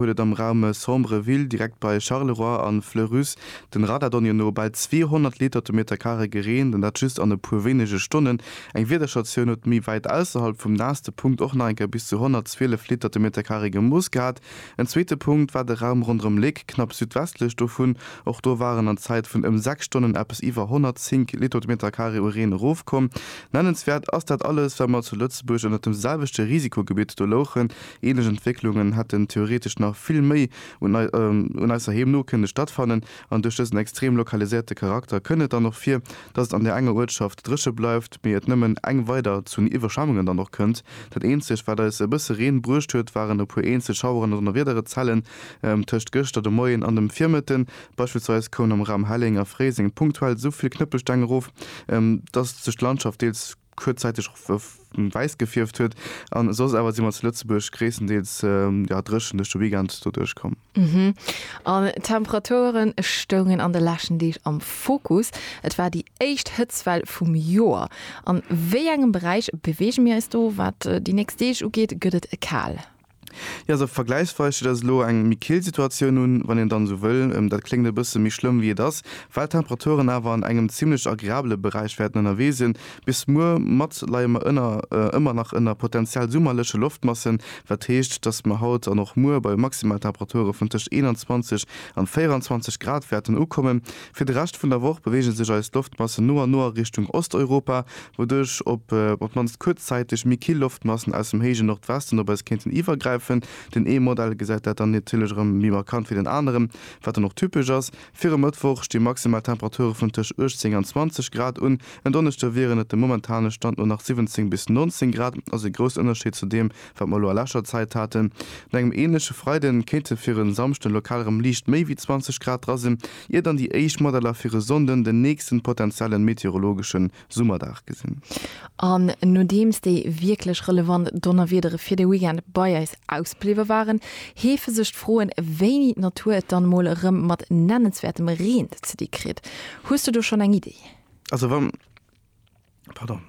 huet et am Raum Sombreville, direkt bei Charleroi a Fleurus, den Radardonnier no, bal 200 Liter de Meter Carré gereent, an dat just an e puer wéinege Stonnen. Eng Wiederstatioun huet méi wäit ausserhalb vum naasste Punkt och nach eng Kéier bis zu 112 Liter de Meter Carré gemooss gehat. En zweete Punkt war de Raum ronderëm Léck, knapp südwestlech dovun. Och do waren an Zäit vun ëm 6 Stonnen eppes iwwer 105 Liter de Meter Carré u Reen erofkomm. Nennenswäert ass dat alles, well mer zu Lëtzebuerg ënnert dem selwechte Risikogebitt do louchen, Ähnlech Entwécklungen hätten theoretesch nach vill méi un eisser Heemno kënne stattfannen, an duerch dësen extrem lokaliséierte Charakter kënn et dann och vir, dass et an där enger Uertschaft dréche bleift, mee et nëmmen eng weider zu Iwwerschwemmungen dann och kënnt. Dat eenzegt, wat eis e bësse Reen bruecht huet, waren e puer eenzel Schaueren an Donnerwiederezellen tëscht gëschter de Moien an dem Virmëtten. Beispillsweis koum am Raum Helleng a Fréiseng punktuell souvill Knëppelsteng erof, dass sech d'Landschaft deels. kuerzzäiteg och wäiss gefierft huet an soss awer si mer zu Lëtzebuerg gréisstendeels ja dréchen duerch de Weekend do duerch komm. An d'Temperature stoungen an de leschten Deeg am Fokus. Et war déi éischt Hëtztwell vum Joer. An wéi engem Beräich beweege mir eis do? Wat déi nächst Deeg ugeet, gëtt et kal. Jo, esou vergläichsweis steet eis elo eng méi kill Situatioun un, wann een dann esou wëll. Dat kléngt e bësse méi schlëmm wéi et ass, well d'Temperaturen awer an engem zimmlech agreabele Beräich wäerten ënnerwee sinn. Bis muer Matt leie mer ënner ëmmer nach ënner potenziell summerleche Loftmassen, wat heescht, datt mer haut an och muer bei Maximaltemperature vun tëscht 21 an 24 Grad wäerten ukommen. Fir de Rescht vun der Woch beweege sech eis Loftmassen no a no a Richtung Osteuropa, wouduerch op op d'mannst kuerzzäiteg méi kill Loftmassen aus dem héije Nordwesten op eis kéinten iwwergräifen. Den ee Modell gesäit dat dann natierlech erëm méi markant wéi den aneren, wat dann och typesch ass. Fir e Mëttwoch sti maximal Temperature vun tëscht 18 an 20 Grad un. En Donneschde wieren et dem momentane Stand no nach 17 bis 19 Grad, also ee groussen Ënnerscheed zu deem, Wat mer elo a leschter Zäit haten, un engem änleche Freiden, kéinte fir e Samschden lokal erëm liicht méi wéi 20 Grad dra sinn, ier dann déi éischt Modeller fir e Sonnden den nächsten potentiellen meteorologeschen Summerdag gesinn. An nodeems déi wierklech relevant Donnerwiedere fir de Weekend bei eis ausbliwwe waren, heefe sech d'Froen, wéini d'Natur et dann emol erëm mat nennenswäertem Reen ze di kritt. Hues du do schonn eng Iddi? Also wann. Pardon.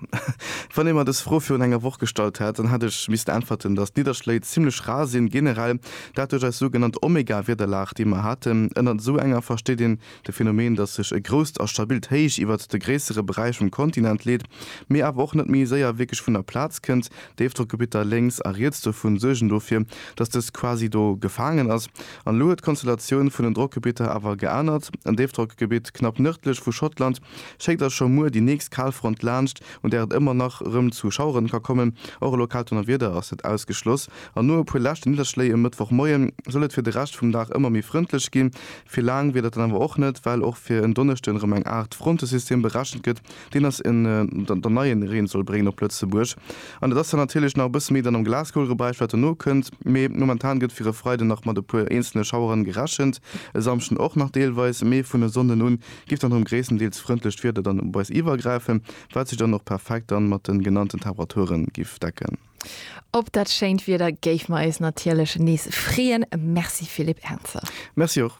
Wann ee mer dës Fro virun enger Woch gestallt hätt, dann hätt ech missten äntwerten, datt d'Nidderschléi zimmlech rar sinn, generell dat duerch eis sougenannt Omega-Wiederlag, déi mer haten. Ënnert esou enger versteet een de Phänomen, datt sech e grousst a stabilt Héich iwwert de gréissere Beräich vum Kontinent leet, mee awer och net méi séier wierklech vun der Plaz kënnt. Déifdrockgebitter lénks a riets dovun suergen dofir, datt dëst quasi do gefaangen ass. An elo huet d'Konstellatioun vun den Drockgebitter awer geänert. En Déifdrockgebitt knapp nërdlech vu Schottland Schéckt Iech scho muer déi nächst Kalfront laanscht, un där et ëmmer nach erëm zu Schaueren ka kommen. Och e lokaalt Donnerwieder ass net ausgeschloss. An no e puer leschte Nidderschléi e Mëttwochmoien soll et fir de Rescht vum Dag ëmmer méi frëndlech ginn. Fir laang wier dat dann awer och net, well och fir en Donneschde erëm eng Aart Frontesystem berechent gëtt, deen ass dann neie Reen soll bréngen op Lëtzebuerg. An et ass dann natierlech nach e bësse méi dann am Glaskoulgebräich, wat dono kënnt. Mee momentan gëtt fir e Freide nach mat e puer eenzelne Schaueren gerechent, e Samschden och nach deelweis, mee vun e Sonnden un Giff dann rem gréisstendeels frëndlecht Wieder dann op eis iwergräifen, waat sech dann och perfekt dann mat den genannten Temperaturen giff decken. Op dat schéint Wieder géifen mer eis natierlech nees freeën. Merci Philippe Ernzer. Merci och.